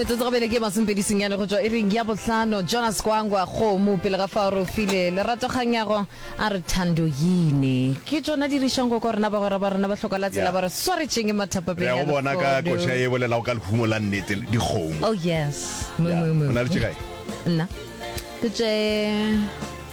metsotso gabele ke masompedi senyane go tswa e reng ya bohlano jonas kwangwa kgomo pele ga fa re file lerato kganyago a re thando yine ke tsona dirišang go ka rena bagwera ba rena ba hloka la tsela ba re swaretseng e mathapapeo bona ka koša e bolelago ka lehumo la nnete dikgomo oh yes mo mo mo nna ke tše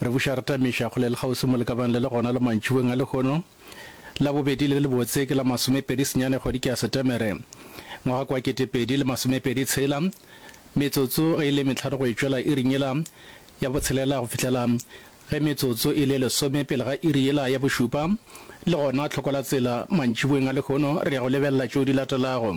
Re buša re tamiša kgole le kgauswi mo le ka bang le le gona le mantšibeng a lehono. Labobedi le le lebotse ke la masomepedi senyane kgwedi ke ya Setemere, ngwaga ke wa ketepedi le masomepedi tshela. Metsotso ge e le mehlano go e tšwela iring yela ya botshelela go fihlela ge metsotso e le lesome pele ga iri yela ya bošupa, le gona tlhoko la tsela mantšibeng a lehono re ya go lebelela tšeo di latelago.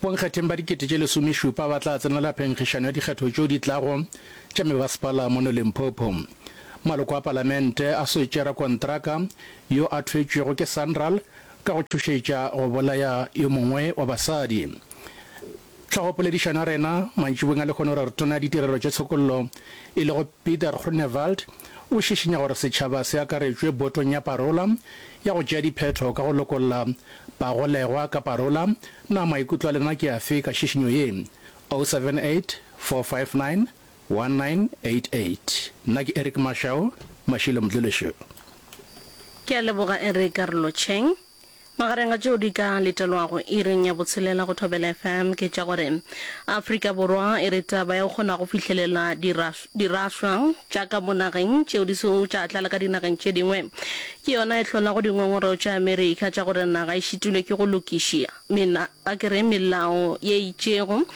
Bonkgetheng ba dikete tše lesomešupa ba tla tsenela phenkgišano ya dikgetho tšeo di tlago tša mebasepala mono Limpopo. Maloko a palamente a swetše rakontraka yo a thwetšwego ke Sanral ka go tšhošetša go bolaya yo mongwe wa basadi. Tlhogopoledišano ya rena mantšibong a lehono re re Tona ya Ditirelo tša Tshokollo e lego Pieter Groenewald o šišinya gore setšhaba se akaretšwe botong ya parola ya go tšea diphetho ka go lokolla bagolegwa ka parola Na maikutlo a lena ke afe ka šišinyo ye? 0784591988 Nna ke Eric Mashau, Mashilo Mdluleshu. Ke a leboga Eric Karlocheng. Magareng a tšeo di ka letelwago iring ya botshelela go Thobela FM ke tša gore Afrika Borwa e re taba ya go kgona go fihlelela di ra, dirahlwa tša ka mo nageng tšeo di sego tša tlala ka dinageng tše dingwe ke yona e hlolago dingongoreo tša Amerika tša gore naga e šitilwe ke go lokišia mena a ke re melao ye itšego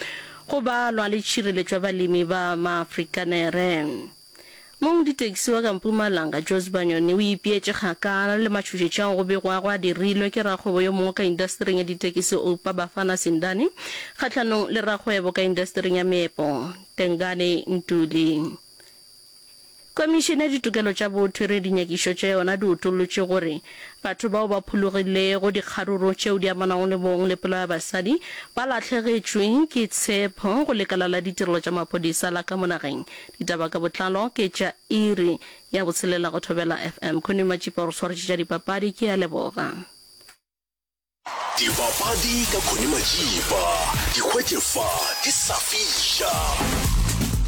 go ba lwa le tšhireletšwa balemi ba Maafrikanere. Mong ditaxi wa ka Mpumalanga, Jozi Banyoni o ipeetše kgakala le matšhošetši ao go begwago a dirilwe ke rakgwebo yo mongwe ka indasetering ya ditekisi Oupa Bafana Sindani kgahlanong le rakgwebo ka indasetering ya meepo Tengane Ntuli. Komišene ya Ditokelo tša Botho e re dinyakišo tša yona di utollotše gore batho bao ba phologilego dikgaruru tšeo di amanago le bong le polao ya basadi ba lahlegetšwe ke tshepo go lekala la ditirelo tša maphodisa la ka mo nageng. Ditaba ka botlalo ke tša iri ya botshelela go Thobela FM. Connie Matšipa o re swaretšetša dipapadi. Ke a leboga. Dibapadi ka Connie Majiba, di hwetše fa di sa fiša.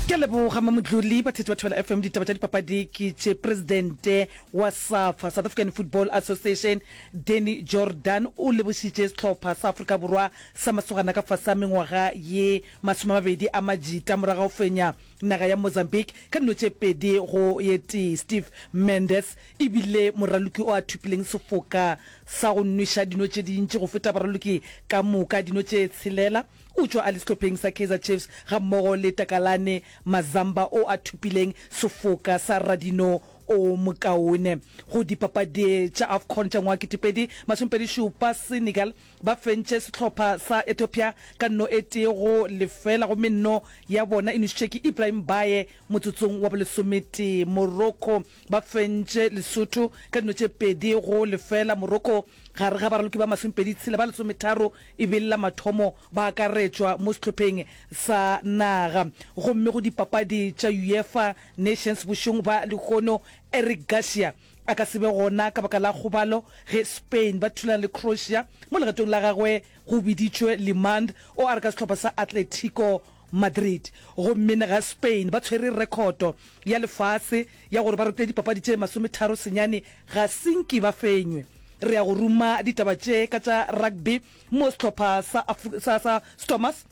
Ke a leboga Mamotloli. Batheetši ba Thobela FM ditaba tša dipapadi ke tše Presidente wa Safa, South African Football Association, Danny Jordaan o lebošitše sehlopha sa Afrika Borwa sa masogana ka fase a mengwaga ye masome a mabedi a majita morago ga go fenya Naga ya Mozambique ka dilo tše pedi go ye tee. Steve Mendes e bile moraloki o a thopileng sefoka sa go nweša dino tše dintši go feta baraloki ka moka, dino tše tshelela. O tšwa a le sehlopheng sa Kaizer Chiefs gammogo le Takalane Mazamba o a thopileng sefoka sa radino o mokaone go dipapadi tša Afcon tša ngwaga wa ketepedi masomepedi šupa. Senegal Ba fentše sehlopha sa Ethiopia ka nno e tee go lefela gomme nno ya bona e nošitšwe ke Ibrahim Baye motsotsong wa bolesometee. Morocco ba fentše Lesotho ka dino tše pedi go lefela. Morocco gare ga baraloki ba masomepedi tshela ba lesometharo e be e le la mathomo ba akaretšwa mo sehlopheng sa naga. Gomme go dipapadi tša Uefa Nations bošong ba lehono Eric Garcia A ka se be gona ka baka la kgobalo ge Spain ba thulana le Croatia mo legatong la gagwe go biditšwe Limand o a re ka sehlopha sa Atletico Madrid. Gomme na ga Spain ba tshwere rekhoto ya lefase ya gore ba rete dipapadi tše masometharo senyane? Ga se nke ba fenywe. Re ya go ruma ditaba tše ka tša rugby mo sehlopha sa Stormers.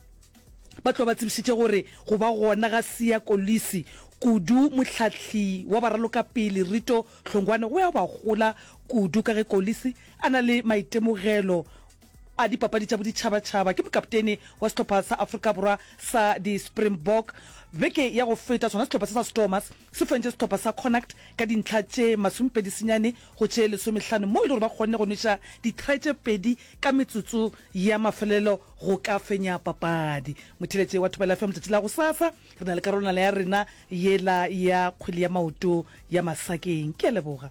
Ba tlo ba tsebišitše gore go ba gona ga Siya Kolisi, kudu mohlahli wa baralokapele Rito Hlongwane go ya go ba gola kudu ka ge Kolisi a na le maitemogelo a dipapadi tša boditšhabatšhaba. Ke mokaptene wa sehlopha sa Afrika Borwa sa di-Springbok. Beke ya go feta sona sehlopha se sa Stormers Se fentše sehlopha sa Connacht ka dintlha tše masomepedi senyane go tše lesomehlano moo e le gore ba kgonne go nweša ditry tše pedi ka metsotso ya mafelelo go ka fenya papadi. Motheeletše wa Thobela FM letšatši la gosasa re na le karolwana ya rena yela ya kgwele ya maoto ya Masakeng. Ke a leboga.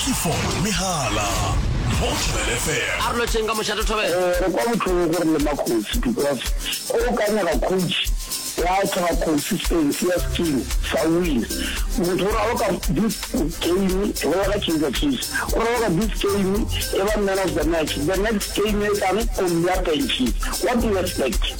Clifford Mehala, Motlhobel FM. a re lotšeng ka mošate thobela Eh, re kwa botlhoko gore le makgosi because o ka nyaka coach wa tlhoka consistency ya team sa win motho o raloka this game e bolela ka kaizer chiefs o raloka this game e ba man of the match the next game e tlang o mmeya benches what do you expect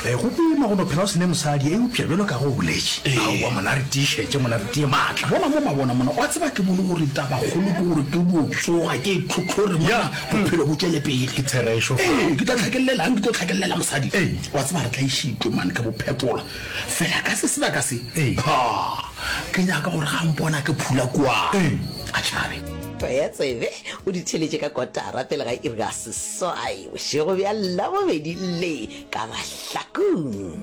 E, go boima go no phela o sene mosadi, eupša bjalo ka ge o boletše. Aowa, mona re tiišetše, mona re tie maatla. Mola mo mabona mona, wa tseba ke bone gore tabakgolo ke gore ke dio tsoga, ke e tlhotlhore mona, bophelo bo tšwele pele. Ke therešo. Ee, ke tla tlhakellelang, ke tlo tlhakellela mosadi. Ee. Wa tseba re tla išitwe mane, ke bo phetola. Fela ka se sebaka se. Ee. Ha, ke nyaka gore ga mpona ke phula kua. Ee. A tšhabe. Tsebe, o di theletše ka kotara pele ga iri ya ses. Seswai bošego bja Labobedi le ka mahlakong.